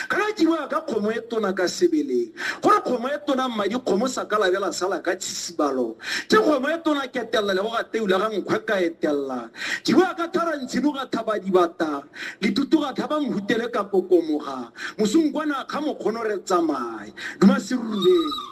ka ka dirwa ka kgomo e tona ka sebeleng gore kgomo e tona mmadi kgomo sa ka labela sala ka tshisibalo ke kgomo e tona ketelela le go ga teula ga nkgwe ka etelela dirwa ka thara ntshimo ga thaba dibata litutu ga thaba mhutele ka kokomoga mosong kwana kga mokgono re tsamaye duma serurubeng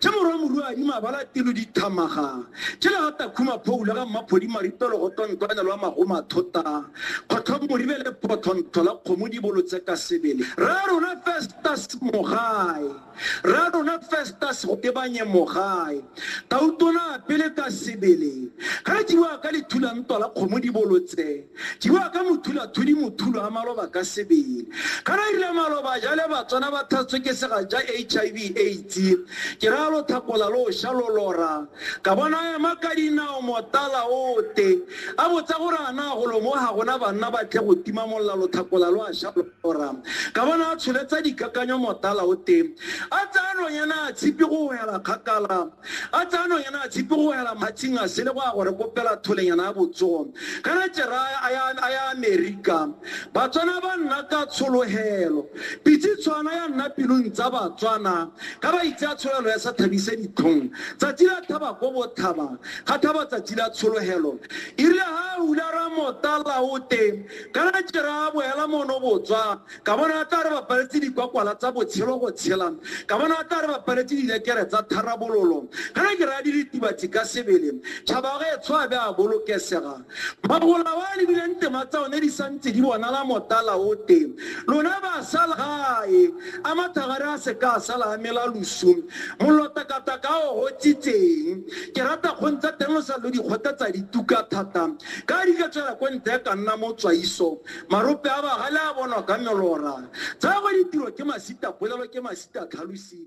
Tše morwa Morwadi Mabala Telo Dithamaga, tše le ga Takhuma Phoula ga Mmaphodi Maripelo go Tontoanya lwa Magoma Thota, Kgotlho Moribe le Photho Ntho la Kgomo di bolotse ka sebele. Rra rona Festus Mogae, Rra rona Festus go tebanye Mogae, Tautona a pele ka sebele, ga re tšiboa ka lethula ntwa la Kgomo di bolotse. Jiwa ka mothula thudi mothulo a maloba ka sebele. Kana irile maloba jale batswana ba thatswe ke sega ja HIV AIDS. Ke ra lo thakola lo sha lo lora. Ka bona ema ka dinao motala ote. A botsa gore ana go lo mo ha gona banna ba tle go tima molla lo thakola lo a sha. Ora. Ka bona a tsholetsa dikakanyo motala o teng. A tsaya nonyana a tshipi go hela kgakala. A tsaya nonyana a tshipi go hela matshing a sele go ya gore kopela tholenyana ya botsogo. Kana tšeraya a ya a ya Amerika. Batswana ba nna ka tsholohelo. Pitsi tshwana ya nna pilung tsa Batswana. Ka ba itse a tsholelo ya sa thabise ditlhong. Tsatsi la thaba ko bothaba. Ga thaba tsatsi la tsholohelo. Irile ha a hula ra motala o teng. Ka la jera a boela mono botswa, ka bona a tla re ba paletse dikwakwala tsa botshelo go tshela, ka bona a tla re ba paletse dilekere tsa tharabololo. Ka la jera a diritibatsi ka sebele, tšhaba ge tsho a be a bolokesega. Magola wa lebile ntema tsa one di sa ntse di bonala motala o te. Lona ba sa la gae, a mathagare a se ka a sa la amela losu, mollo takataka o gotsitseng. Ke rata kgong tsa teng o sa lo di kgothatsa di tuka thata. Ka di ka tswela ko ntle ka nna mo tswaiso. Marope a bagale a bonwa ka melora. Tsa go ditiro ke masita polelo ke masita tlhalosi.